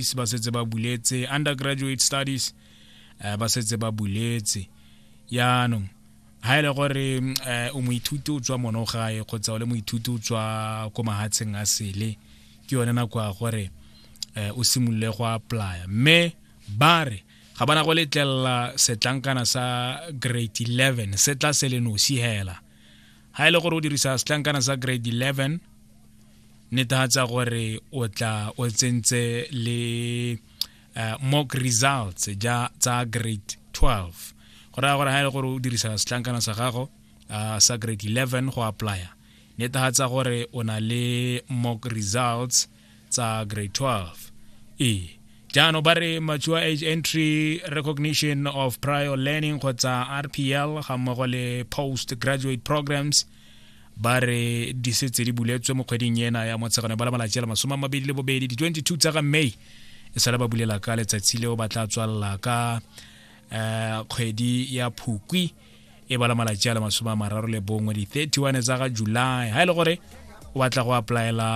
studies ba setse ba buletse undergraduate studies uh, ba setse ba buletse yaanong ha e le gore um eh, o moithuti o tswa mono gae kgotsa o le moithuti o tswa ko mahatsheng a sele ke yone nako ya gore um o simolole go applya mme ba re ga bana go letlelela setlankana sa grade 11 se tla se le nosi hela ga e le gore o dirisa setlankana sa grade 11 netefatsa gore o tla o tsentse le uh, mock results ja tsa grade 12 go raya gore ga e le gore o dirisa setlankana sa gago uh, sa grade 11 go applya netefatsa gore o na le mock results tsa grade 12 e jaanong ba re mature age entry recognition of prior learning kgotsa rpl ga mmogo le post graduate programs ba re di setse di buletswe mo kgweding ena ya motshegano ba la malatsi a le masome a mabedi le bobedi di-22 tsa ga may e sale ba bulela ka letsatsi leo ba tla tswalela ka um kgwedi ya phukwi e bala malatsi a le masome a mararo le bongwe di-31 tsa ga july ha e le gore o batla go applyela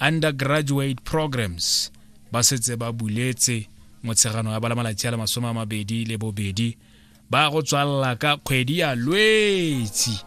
undergraduate programs ba setse ba buletse motshegano ya bala malatsi a le masome a mabedi le bobedi ba go tswalela ka kgwedi ya lwetsi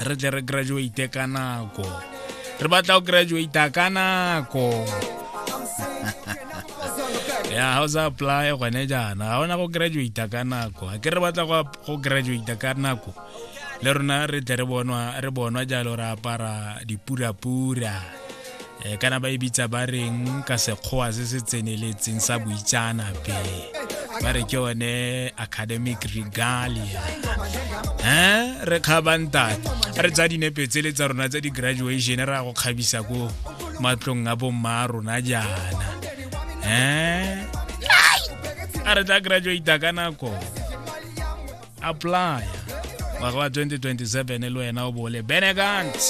re tle re graduate ka nako re batla go graduata ka nako ya ga o sa apply gone jaana ga ona go graduata ka nako a ke re batla go graduata ka nako le rona re tle re bonwa jalo re apara dipurapura um kana ba e bitsa ba reng ka sekgowa se se tseneletseng sa boitsaanape ba re ke one academic regalia um re kgabantate re tsa dinepe tsele tsa rona tsa di-graduation re ya go kgabisa ko matlong a bomma a rona jaana um a re tla graduata ka nako applya ngwaga wa 2027 le wena o bole benegans